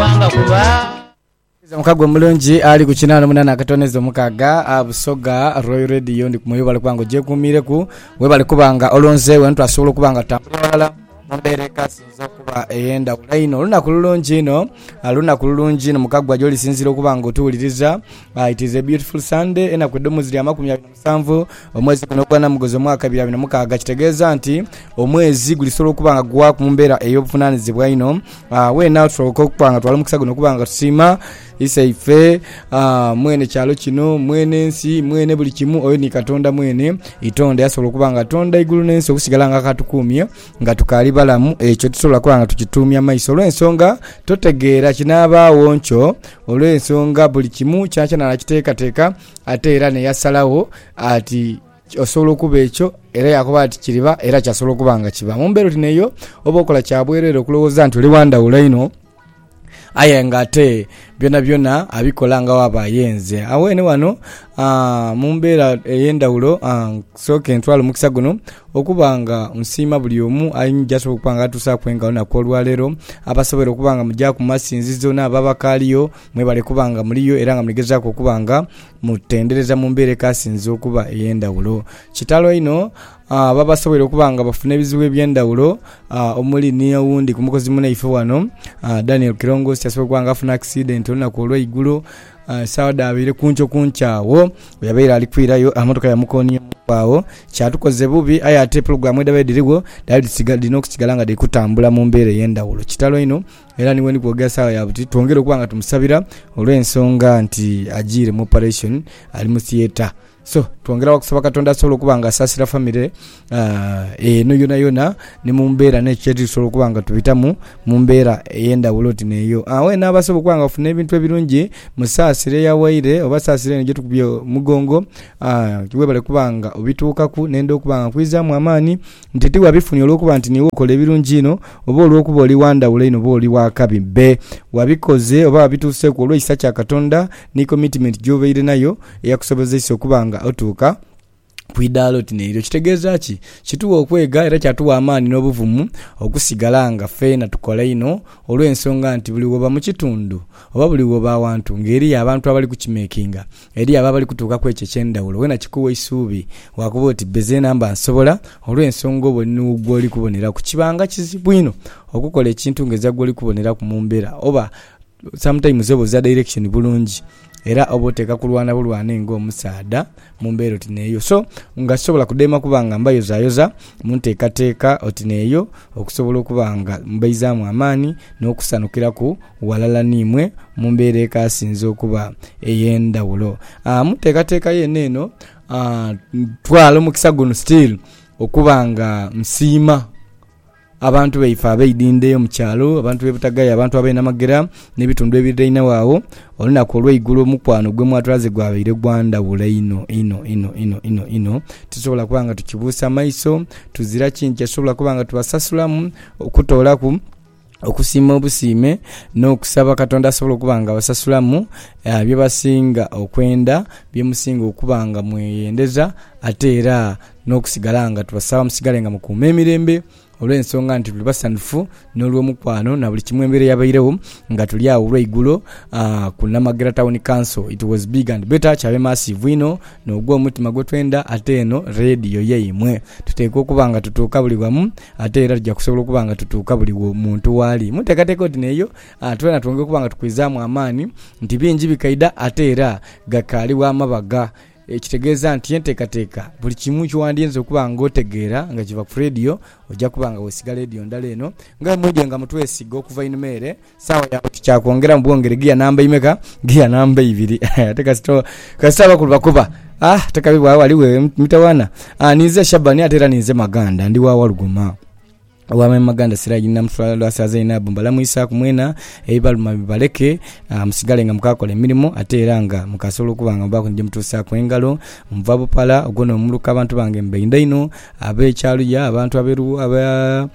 kubanga kuba Nze mukago omulungi ali ku kinaana omunana akatoneza omukaaga ah, Busoga Royal Radio ndi kumwe webale kuba nga ogyekuumiireku webale kuba nga olonze wena twasobola okuba nga tutambula ghalala mu mbeera ekasinze okuba ey'endhawulo einho olunaku lulungi inho ah, lunaku lulungi inho mukagwa gy'olisinziira okuba nga otuwuliriza Ah, it is a beautiful Sunday enaku edho mwezi lya makumi abiri Musanvu, Omwezi guno ogwa Namuguzi omwaka ebiri abiri na mukaaga kitegeeza nti omwezi gulisobola okuba nga gugwaaku mu mbeera ey'obuvunanizibwa inho ah, weena tusobola okuba nga twala omukisa guno okuba nga tusiima iseife ah, mwene kyalo kino mwene nsi mwene buli kimu oyo ni katonda mwene itonde yasobola okuba nga atonda eigulu n'ensi okusigala nga akatukuumye nga tukaali balamu ekyo tusobola kuba nga tukituumya maiso olw'ensonga totegeera kinaabaagho nkyo olw'ensonga buli kimu kyonakyoona arakitekateka Ate era ne yasalagho ati osobola okuba ekyo, era yaakoba ati kiriba, era kyasobola okuba nga kiba. Mu mbeera oti n'eyo, oba okola kya bwereere okulowooza nti oli wa ndhawulo inho, aye ng'ate byonabyona abikola nga waaba ayenze. Abweene ghano aa, mu mbeera ey'endhawulo aa, nsooke ntwale omukisa guno okuba nga nsiima buli omu ain, gy'asobola okuba nga atuusaaku enga olunaku olwaleero, abasoboire okuba nga mugya ku masinzizo n'abo abakaaliyo. Mwebale kuba nga muliyo era nga muli gezaaku okuba nga mutendereza mu mbeera ekasinze okuba ey'endhawulo. Kitalo inho aba basoboire okuba nga bafuna ebizibu eby'endhawulo omuli ni owundi ku mukozi munaife wano Daniel Kirongosi asoboire okuba nga afuna akisidenti olunaku olw'eigulo sawa dhabaire kunkyo kunkyo agho bwe yabaire ali kwirayo emotoka yamukooniaku agho kyatukoze bubi aye ate pulogulaamu edhabaire dhirigho dhaali dhirina okusigala nga dhiri kutambula mu mbeera ey'endhawulo. Kitalo inho. Era ni bwendi kwogera saagha ya buti twongere okuba nga tumusabira olw'ensonga nti ajiire mu operation, ali mu theatre. So twongera wa kusaba Katonda asobole okuba nga asaasira famire ah, eno yonayona ni mu mbeera n'ekyo kye tuli tusobola okuba nga tubitamu mu mbeera ey'endhawulo oti n'eyo. Ah, wena abasobola okuba nga bafuna ebintu ebirungi, musaasire eyawaire oba saasira eno gye tukubye omugongo. Ah, webale kuba nga obituukaku, nenda okuba nga nkwizaamu amaani Nti ti wabifunye olw'okuba nti niiwe okola ebirungi inho, oba olw'okuba oli wa ndhawulo inho, oba oli wa kabi. Be. Wabikoze, oba wabituuseeku, olw'ekisa kya Katonda ni komitimenti gy'obaire nayo eyakusobozeisa okuba nga otuuka ku idaala oti n'elyo. Kitegeeza ki? Kitugha okwega era kyatugha amaani n'obuvumu okusigala nga feena tukola inho olw'ensonga nti buli woba mu kitundu oba buli woba awantu ng'eriyo abantu abali kukimekinga Eri abo abali kutuuka ku ekyo eky'endhawulo, wena kikuwa eisuubi. Waakoba oti, Bbezeena mba nsobola, olw'ensonga obwo ni wo gw'oli kuboneraku. Kibanga kizibu inho okukola ekintu nga ezira gw'oli kuboneraku mu mbeera, oba sometimes oba oza direction bulungi, era oba oteeka kulwana bulwane nga omusaadha mu mbeera oti n'eyo. So, nga sisobola kudema kuba nga mbayozayoza mu nteekateeka oti n'eyo okusobola okuba nga mbaizaamu amaani n'okusanukiraku. Ghalala n'imwe mu mbeera ekaasinze okuba ey'endhawulo mu nteekateeka yeene eno, ntwala omukisa guno still okuba nga nsiima abantu baife abeidhindha eyo mu kyalo, abantu b'e Butagaya, abantu ab'e Namagera n'ebitundu ebirirainhagho agho. Olunaku olw'eigulo omukwano gwe mwatulaze gwabaire gwa ndhawulo einho, inho, inho, inho, inho, inho. Tisobola kuba nga tukibuusa maiso, tuzira ki nti tisobola kuba nga tubasasulamu okutoolaku. okusiima obusiime n'okusaba Katonda asobole okuba nga abasasulamu bye basinga okwenda, bye musinga okuba nga mweyendeza ate era n'okusigala nga tubasaba musigale nga mukuuma emirembe olw'ensonga nti tuli basanhufu n'olwomukwano na buli kimu embeera eyabairegho nga tuli agho olweigulo ku Namagera Town Council. It was big and better, kyabe maasiivu inho n'ogw'omutima gwetwenda ate eno leediyo yaimwe tuteekwa okuba nga tutuuka buli wamu. Ate era tuja kusobola okuba nga tutuuka buli wo muntu waali. Mu nteekateeka oti n'eyo, a twena twongera okuba nga tukwizaamu amaani nti bingi bikaidha ate era ghakaali wa mabagha. Ekitegeeza nti enteekateeka buli kimu kyewandiyinza okuba ng'otegeera nga kiva ku leediyo, oja kuba nga weesiga leediyo ndala eno. Nga bwe mwidhye nga mutwesiga okuva einhuma ere, Saawa ya buti kya kwongera mu bwongere giya namba imeka? Giya namba ibiri. Ate kasita o- kasita abakulu bakuba ah tekabi bwa wali we mitawana ah ninze Shabani ate era ninze Maganda ndi wa Walugoma owa me Maganda Siraji Namuswala Lwasa Zainabu mbalamwisaku mwena ebibaluma bibaleke ah, musigale nga mukakola emirimo ate era nga mukasobola okuba nga mubaku ni gye mutuusaku engalo nva Bupala ogwo n'omuluka abantu bange mbainda inho ab'e Kyaluya abantu ab'e Lu- ab'e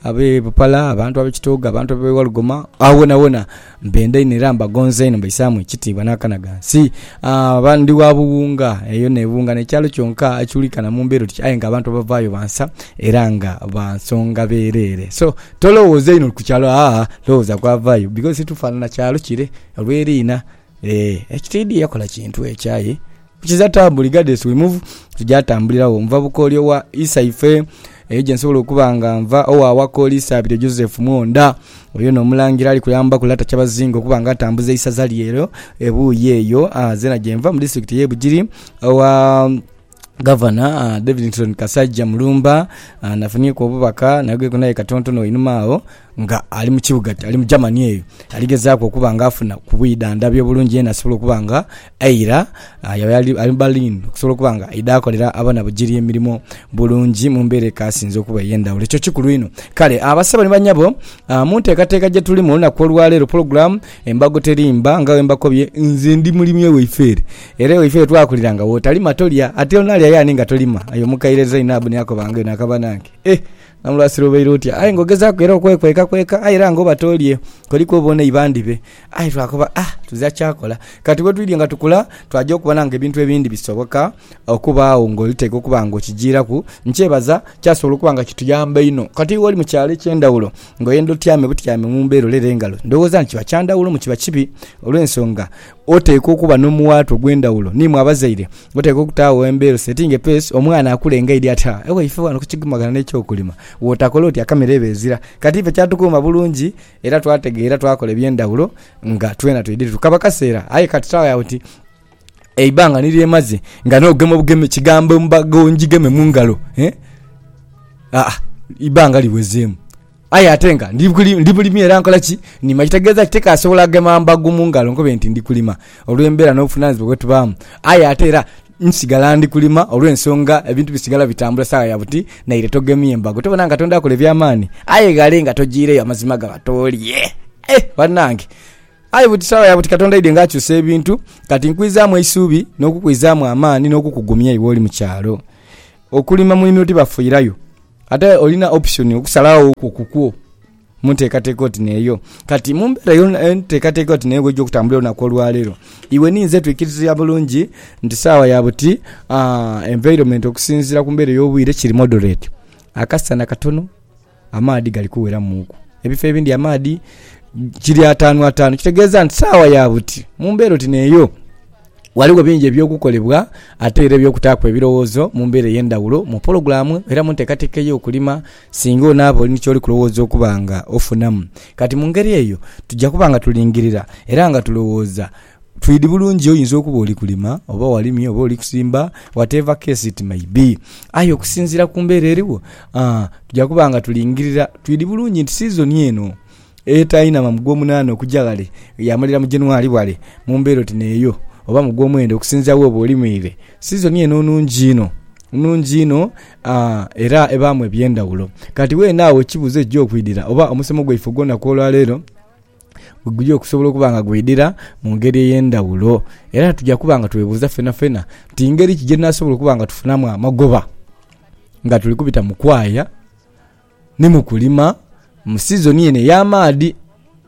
abe Bupala, abantu abe Kitooga, abantu abe Walugoma, agho wonawona mbenda inho era mbagonza inho mbaisaamu ekitiibwa n'akana ghansi. Aa, ndi wa Buwunga, eyo n'e Buwunga n'ekyalo kyonka ekiwulikana mu mbeera oti aye ng'abantu abavaayo bansa era nga ba nsonga bwereere. So, tolowooza inho ku kyalo, aa, lowooza ku avaayo bikozi titufaanana kyalo kire olw'eriina. Ee, ekitiidhi yakola kintu ekyo aye kukiza taabu regardless we move to gyatambuliragho. Nva bukooli owa Isaife, eyo gye nsobola okuba nga nva, owa Wakooli Isaabiryo Joseph Mwonda. Oyo n'Omulangira ali kuyambaku Lata Kyabazinga okuba nga atambuza eisaza lye eryo ebuuyi eyo. Aa, zeena gye nva mu disitulikiti ey'e Bugiri, owa. Gavana Davidson Kasaija Mulumba nafunhieku obubaka nayogereku naye katontono einhuma agho nga ali mu kibuga ali mu Germany eyo ali gezaaku okuba nga afuna ku bwidhandhabi obulungi yena asobole okuba nga eira yaba ali mu Berlin okusobola okuba nga aidha akolera abanabugiri emirimo bulungi mu mbeera ekasinze okuba ey'endhaghulo. Ekyo kikulu inho. Kale abasebo ni banyabo mu nteekateeka gye tulimu olunaku olwaleero pulogulaamu. Embago terimba nga wembakobye, nze ndi mulimi ewaife ere, era ewaife ere twakulira nga wotalima tolya, ate onalya yaani nga tolima? Aye omukaire Zainabu niakoba nga eno akaba nange. Eh! Namulwasira obaire otya? Aye nga ogezaku era okwekwekakweka, aye era nga oba tolye, koliku oba onaiba ndibe? Aye twakoba ah! tuzira kyakola. Kati wetwidhye nga tukula, twaja okubona nga ebintu ebindi bisoboka okubaagho nga oliteeka okuba nga okijiiraku. Nkyebaza, kyasobola okuba nga kituyamba inho. Kati iwe oli mu kyalo ekyendhawulo. Ngoye ndhotyame butyame mu mbeera olera engalo, ndowooza nti kiba kya ndhawulo mu kiba kibi olw'ensonga oteekwa okuba n'omuwaatwa ogw'endhawulo ni imwe abazaire. Oteekwa okutaagho embeera osetinge peesi omwana akule nga aidhi ati, Ha, ewaife ghano ku kigumagana n'eky'okulima bw'otakola oti akamera eba ezira. Kati ife kyatukuuma bulungi era twategeera twakola eby'endhawulo nga twena twidhire tukaba kaseera. Aye kati taagho agho oti, Eibanga ni lye maze nga nh'ogema obugeme kigambo embaga ongigeme mu ngalo, eh? Aa, eibanga liwezeemu. Aye ate nga ndi bulimi era nkola ki? Nima, ekitegeeza nti tikaasobola gema mbago mu ngalo nkobe nti ndi kulima olw'embeera n'obuvunaanyizibwa bwe tubaamu. Aye ate era nsigala ndi kulima olw'ensonga ebintu bisigala bitambula saawa ya buti naire togemye mbago. Tobona nga Katonda akola eby'amaani? Aye ghale nga tojiireyo amazima gaba toolye. Eh, banange! Aye buti sawa ya buti Katonda aidye ng'akyusa ebintu. Kati nkwizaamu eisuubi, n'okukwizaamu amaani, n'okukugumya iwe oli mu kyalo. Okulima mu nimiro tibafuirayo. Ate olina option okusalagho okwo ku kwo mu nteekateeka oti n'eyo. Kati, mu mbeera yo, enteekateeka oti n'eyo bw'eija okutambulira olunaku olwaleero, iwe ni nze twikiriza bulungi nti sawa ya buti, aa, environment okusinziira ku mbeera ey'obwire kiri moderate. Akasana katono, amaadhi gali kuweramuuku. Ebifo ebindi amaadhi kiri ataanu ataanu, kitegeeza nti saawa ya buti mu mbeera oti n'eyo ghaligho bingi eby'okukolebwa ate era eby'okutaaku ebirowoozo mu mbeera ey'endhaghulo mu pologulaamu era mu nteekateeka ey'okulima singa onaaba oli ni ky'oli kulowooza okuba nga ofunamu. Kati mu ngeri eyo tuja kuba nga tulingirira era nga tulowooza Twidi bulungi oyinza okuba oli kulima oba walimye oba oli kusimba whatever case it may be aye okusinziira ku mbeera eriwo aa tuja kuba nga tulingirira twidi bulungi nti siizoni eno etainama mu Gwomunaana okuja ghale yaamalira mu January wale mu mbeera oti n'eyo oba mu Gwomwenda okusinziira wooba olimiire. Siizoni eno nnungi inho, nnungi inho aa era ebaamu eby'endhawulo. Kati weenagho ekibuuzo ekija okwidhira oba omusomo gwaife ogw'olunaku olwaleero, bwe guli okusobola okuba nga gweidhira mu ngeri ey'endhaghulo. Era tuja kuba nga twebuuza fenafena nti ngeri ki gye tunaasobola okuba nga tufunamu amagoba nga tuli kubita mu kwaya ni mu kulima mu sizoni eno ey'amaadhi.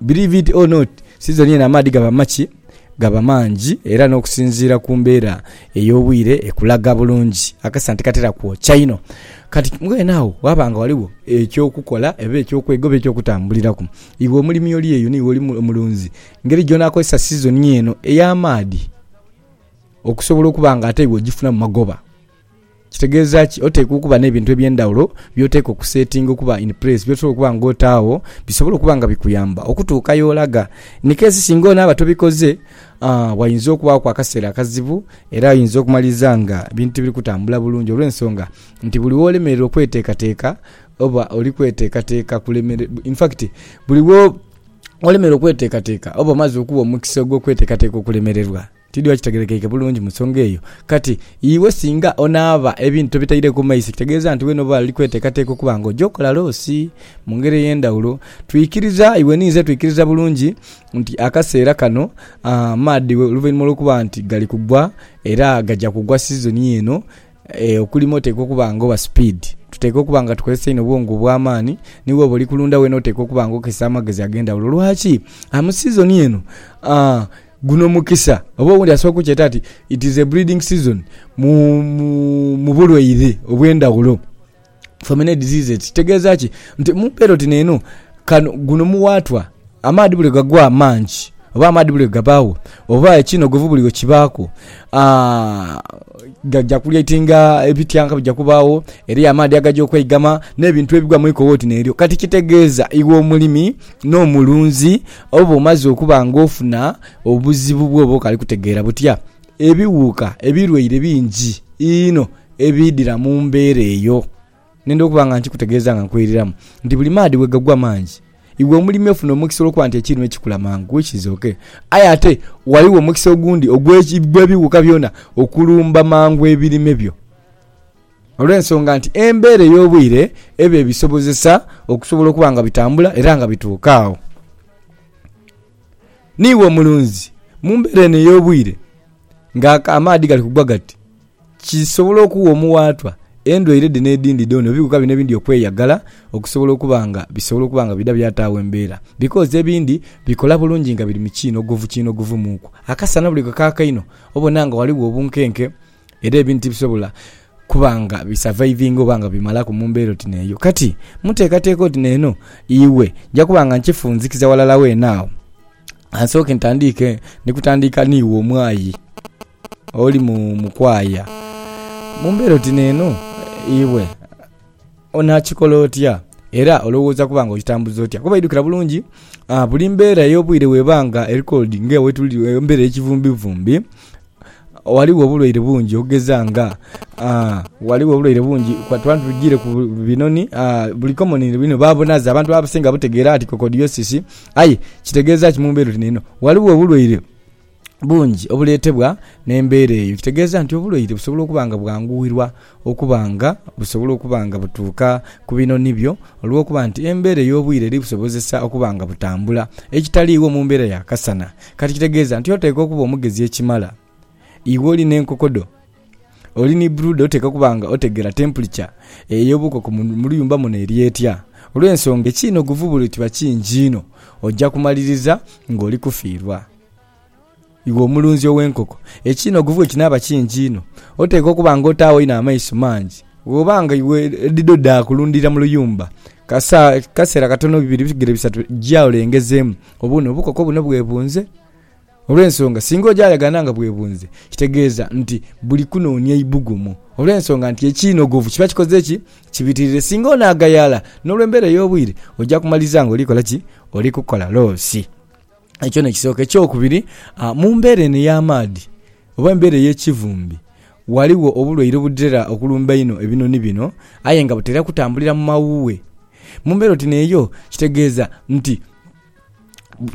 Believe it or not, sizoni eno amaadhi gaba maki? Gaba mangi era n'okusinziira ku mbeera ey'obwire ekulaga bulungi akasana tikatera kwokya inho. Kati mbwenu agho waaba nga ghaligho eky'okukola oba eky'okwega oba eky'okutambuliraku. Iwe omulimi oli eyo, n'iwe oli omulunzi, ngeri gy'onaakozesa sizoni eno ey'amaadhi okusobola okuba nga ate iwe ogifunamu magoba. Kitegeeza ki? Oteekwa okuba n'ebintu eby'endhaghulo by'oteekwa okusetinga okuba in place, by'osobola okuba nga otaagho bisobole okuba nga bikuyamba okutuuka y'olaga. In case singa onaaba tobikoze, ghayinza okubaaku akaseera akazibu era oyinza okumaliriza nga ebintu tibiri kutambula bulungi olw'ensonga nti buli w'olemererwa okweteekateeka Oba oli kweteekateeka kulemere, in fact buli wo olemera okweteekateeka oba omaze okuwa omukisa ogw'okweteekateeka okulemererwa. Tidhi oba kitegerekeike bulungi mu nsonga eyo. Kati iwe singa onaaba ebintu tobitaireku maiso kitegeeza nti wena oba oli kweteekateeka okuba nga oja okola loosi. Mu ngeri ey'endhawulo, twikiriza, iwe ni nze twikiriza bulungi nti akaseera kano amaadhi oluvainhuma lw'okuba nti gali kugwa era gaja kugwa sizoni eno, Okulima oteekwa okuba nga oba sipiidi. Tuteekwa okuba nga tukozesa inho obwongo obw'amaani. Ni bw'oba oli kulunda weena oteekwa okuba nga okozesa amagezi ag'endhaghulo. Lwaki? Mu sizoni eno, guno mukisa. Oba owundi asobola okukyeta ati it is a breeding season mu bulwaire obw'endhaghulo. Famine disease kitegeza ki nti muperoti neno kano guno muwatwa amaadhi buli gagwa mangi oba amaadhi buli gabaawo oba ekinogovu buli wekibaaku ah, gaja kulyatinga ebityanka bija kubaawo eriyo amaadhi agaja okweigama n'ebintu ebigwa mu iko woti neryo kati kitegeeza iwe omulimi n'omulunzi oba omaze okuba nga ofuna obuzibu bwoba okali kutegeera butya Ebiwuuka ebirwaire bingi inho ebiidhira mu mbeera eyo. Nenda okuba nga nkikutegeeza nga nkwiriramu nti buli maadhi bwe gagwa mangi, iwe omulimi ofuna omukisa olw'okuba nti ekiirime kikula mangu, which is ok. Aye ate ghaligho omukisa ogundi ogw'ebiwuuka byona okulumba mangu ebirime byo olw'ensonga nti embeera ey'obwire eba ebisobozesa okusobola okuba nga bitambula era nga bituuka agho. Niiwe omulunzi, mu mbeera eno ey'obwire nga amaadhi gali kugwa gati, kisobola okuwa omuwaatwa endwaire dhino edhindhi dhoona, ebiwuka bino ebindhi okweyagala okusobola okuba nga bisobola okuba nga bidha byataagho embeera. Because ebindhi bikola bulungi nga biri mu kiinhogovu kiinhogovu muuku. Akasana buli bwe kaaka einho, obona nga ghaligho obunkenke. Era ebintu tibisobola kuba nga bisavaivinga oba nga bimalaku mu mbeera oti n'eyo. Kati, mu nteekateeka oti n'eno, iwe, nja kuba nga nkifunzikiza walala weena agho. Ka nsooke ntandiike ni kutandiika n'iwe omwayi oli mu, mu kwaaya. Mu mbeera oti n'eno, iwe. Onaakikola otya, era olowooza kuba nga ogitambuza otya? Kuba idhukira bulungi, buli mbeera ey'obwire bw'eba nga eri cold nga wetuli, embeera ey'ekivumbivumbi, ghaligho obulwaire bungi okugeza nga, ghaligho obulwaire bungi tuba tugiire ku binoni, buli komunire bino baabunhaze, abantu abasinga babutegeera nti kokodhiyosisi. Aye kitegeeza ki mu mbeera oti n'eno? Ghaligho obulwaire. bungi obuleetebwa n'embeera eyo, ekitegeeza nti obulwaire busobola okuba nga bwanguhirwa okuba nga busobola okuba nga butuuka ku binoni byo olw'okuba nti embeera ey'obwire eri busobozesa okuba nga butambula ekitaliiwo mu mbeera ya kasana. Kati kitegeeza nti oteekwa okuba omugezi ekimala iwe oli n'enkoko dho, oli ni brooder oteekwa okuba nga otegeera temperature ey'obukoko mu luyumba muno eri etya olw'ensonga ekiina oguvubule kiba kingi inho oja kumaliriza ng'oli kufiirwa. Iwe omulunzi ow'enkoko, ekinhogovu bwe kinaaba kingi inho, oteekwa okuba ng'otaagho inho amaiso mangi. Bw'oba nga iwe edhidho dha kulundhirira mu luyumba, kaseera katono bibiri bigere bisatu gya olengezeemu obone obukoko buno bwe bunze. Olw'ensonga singa oja yagana nga bwebunze, kitegeeza nti buli kunoonia ibugumu. Olw'ensonga nti ekinhogovu kiba kikoze ki? Kibitirire. Singa onaagayala n'olw'embeera ey'obwire, oja kumaliza ng'oli kola ki? Oli kukola loosi. Ekyo n'ekisooka. Ekyokubiri, mu mbeera eno ey'amaadhi oba embeera ey'ekivumbi, ghaligho obulwaire obutera okulumba einho ebinhonhi bino aye nga butera kutambulira mu mawuughe. Mu mbeera oti n'eyo kitegeeza nti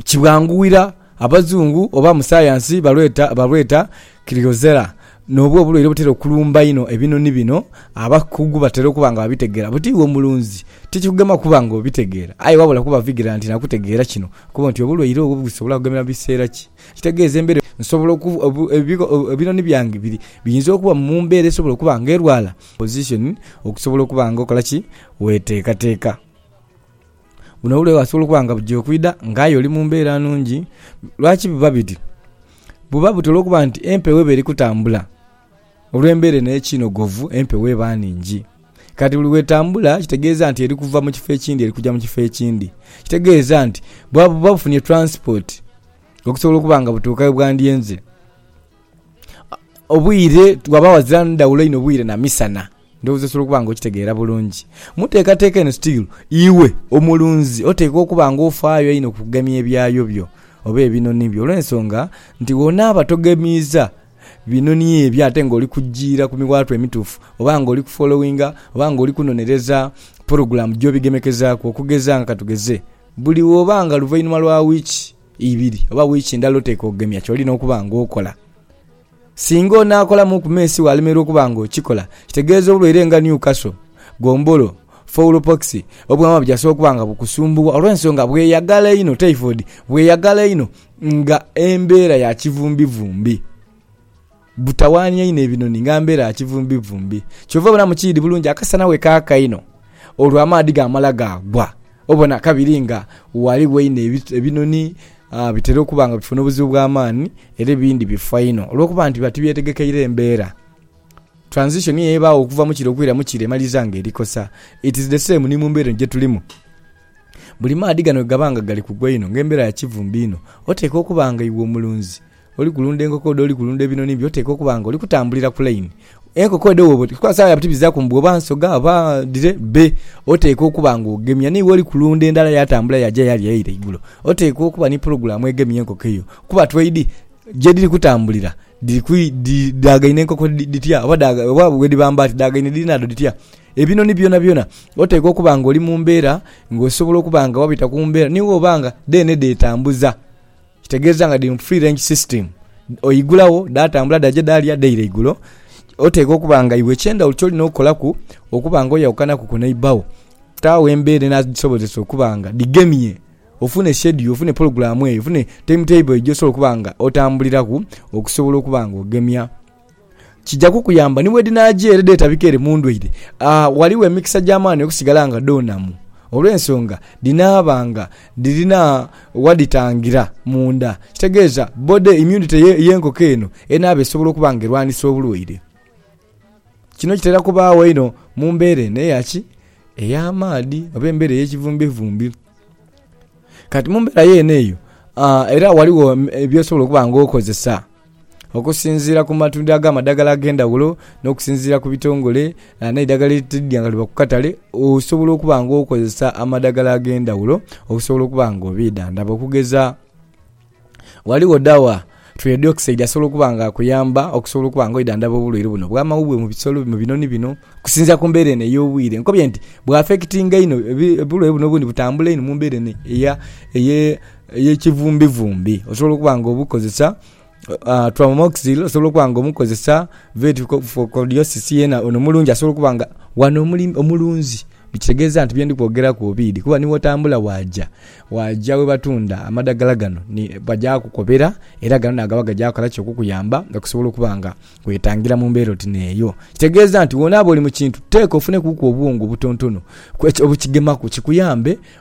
kibwanguira abazungu oba abasayansi balweta Crigosella, N'obwo obulwaire obutera okulumba einho ebinhonhi bino, abakugu batera okuba nga babitegeera. Buti iwe omulunzi, tikikugema kuba nga obitegeera, aye wabula kuba vigilantena kutegeera kino, okube nti obulwaire obwo busobole kugemera mu biseera ki. Ekitegeeza embeera eyo nsobola okuba, ebinhonhi byange biri, biyinza okuba mu mbeera esobola okuba nga erwala. Position, Okusobola okuba nga okola ki? Weteekateeka. Buno obulwaire bwasobola okuba nga buja okwidha nga aye oli mu mbeera nnungi. Lwaki buba biti? Buba buti olw'okuba nti empewo eba eri kutambula olw'embeera eno ey'ekinogovu, empewo eba nhingi. Kati buli bw'etambula kitegeeza nti eri kuva mu kifo ekindhi eri kuja mu kifo ekindhi. Ekitegeeza nti buba bufunye taransipoti okusobola okuba nga butuuka ye bwandyenze. Obwire bwaba ghazira ndhawulo inho bwire na misana. Ndhowooza osobola okuba nga okitegeera bulungi. Mu teekateeka eno still, iwe omulunzi oteekwa okuba nga ofaayo einho ku kugemya ebyayo byo oba ebinhonhi byo olw'ensonga nti bw'onaaba togemiiza binhonhi ebyo ate nga oli kujiira ku miwaatwa emituufu oba nga oli ku followinga oba nga oli kunonereza pulogulaamu gy'obigemekezaaku okugeza nga ka tugeze buli bw'oba nga luvainhuma lwa wiiki ibiri oba wiiki ndala oteekwa okugemya ky'olina okuba ng'okola. Singa onaakolamu ku meesi waalemererwa okuba ng'okikola, kitegeeza obulwaire nga Newcastle, gombolo, fowl pox, obwama byasobola okuba nga bukusumbuwa olw'ensonga bweyagala einho, typhoid, bweyagala einho nga embeera ya kivumbivumbi. Butawaania inho ebinoni nga mbeera ya kivumbivumbi. Kyova obona mu kiidhi bulungi akasana bwe kaaka inho, olwo amaadhi gaamala gaagwa, obona kabiri nga ghaligho inho ebinoni bitera okuba nga bifuna obuzibu bwa maani era ebindhi bifa inho olw'okuba nti biba tibyetegekeire mbeera. Transition eyo ebaagho okuva mu kire okwira mu kire emaliriza nga eri kosa. It is the same ni mu mbeera eno gye tulimu. Buli maadhi gano bwe gaba nga gali kugwa inho nga embeera ya kivumbi inho, oteekwa okuba nga iwe omulunzi, Oli kulunda enkoko odho, oli kulunda ebinhonhi byo, oteekwa okuba nga oli kutambulira ku laini. Enkoko edho bwoba oti, kuba sawa ya buti bizaaku mbu oba nsoga oba dhire bbe. Oteekwa okuba nga ogemya ni woli kulunda endala yatambula yaja yalya yaira igulo. Oteekwa okuba ni pulogulaamu egemya enkoko eyo kuba tweidhi gyedhiri kutambulira dhaagaine enkoko dhitya oba bwe dhiba mbaati dhaagaine dhinhaadho dhitya. Ebinhonhi byonabyona oteekwa okuba nga oli mu mbeera nga osobola okuba nga wabita ku mbeera ni woba nga dheene dheetambuza. Kitegeeza nga dhiri mu free range system. Oigulagho dhatambula dhaja dhalya dhaira igulo. Oteekwa okuba nga iwe eky'endhawulo ky'olina okukolaku okuba nga oyawukanaku ku neighbour wo. Taagho embeera enadhisobozesa okuba nga dhigemye ofune schedule, ofune pulogulaamu eyo, ofune time table eyo gy'osobola okuba nga otambuliraku okusobola okuba nga ogemya. Kija kukuyamba ni bwe dhinaagya ere dheetabika ere mu ndwaire. A Ghaligho emikisa gya maani okusigala nga dhoonamu olw'ensonga dhinaaba nga dhirina wa dhitangira munda. Kitegeeza body immunity y'enkoko eno enaaba esobola okuba nga erwanisa obulwaire. Kino kitera kubaagho einho mu mbeera eno eya ki? Ey'amaadhi oba embeera ey'ekivumbivumbi. Kati mu mbeera yeene eyo, a era ghaligho by'osobola okuba nga okozesa. Okusinziira ku matundiro ag'amadagala ag'endhaghulo n'okusinziira ku bitongole n'eidagala eritadha nga liva ku katale, osobola okuba nga okozesa amadagala ag'endhaghulo okusobola okuba nga obeedhandhaba. Okugeza ghaligho dawa twedioxide asobola okuba nga akuyamba okusobola okuba nga wedhandhaba obulwaire buno obw'amawuggwe mu bisolo bino, mu binhonhi bino okusinziira ku mbeera eno ey'obwire. Nkobye nti bwafekitinga inho, obulwaire buno obundi butambula inho mu mbeera eno eye... ey'ekivumbivumbi osobola okuba nga obukozesa, Amoxil osobola okuba nga omukozesa, Vetkoxokoxosis yena ono mulungi asobola okuba nga, wano omulunzi kitegeeza nti bye ndi kwogeraku obiidhi kuba ni wotambula waaja, waaja we batunda amadhagala gano bajaakukobera era gano naagaba gajaakala ki? Okukuyamba okusobola okuba nga weetangira mu mbeera oti n'eyo. Kitegeeza nti wonaaba oli mu kintu teeka ofunekuku obuwongo obutontono obukigemaku kikuyambe.